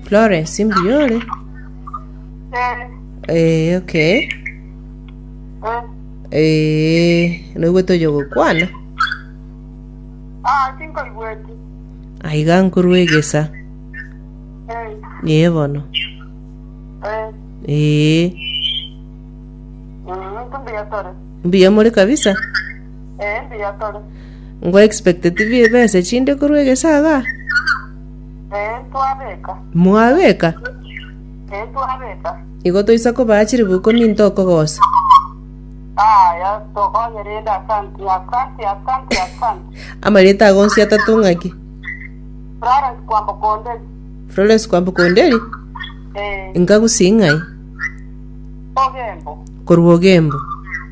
Florence mbuya ore? Eh, okay. Eh, noigwe toja gokwana? Ah, tinkoigweti. Aiga nkorwa egesa. Eh, Ee bono. eh, Ee, mm, tumbuya tore. mbuya more kabisa. Ee mbuya tore. Ngo expect tibi ebesa echinde korwa egesaga? Ee twabeka. Mwabeka? Ee twabeka. Igo toisa kobaa chilifu ikomi into okogosa. Aya tokonye rende asanti asanti asanti asanti. Amarieta ago onsi atato ng'aki? Florence kwambo konde. Florence kwambo konderi? Ee. Nkagusi ng'ai? Ogembo. Korwa ogembo.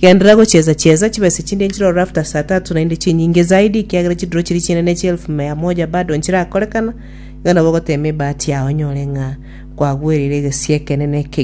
Genderera gochiesa chiesa chibesa chinde nchirorore after saa tatu naende chinyinge zaidi ekiagera chiduro chiria chinene chia elfu mea moja bado nchirakorekana iga nabo ogotema ebahati yao onyore ng'a kwagwereire egesie ekenene ekegiya.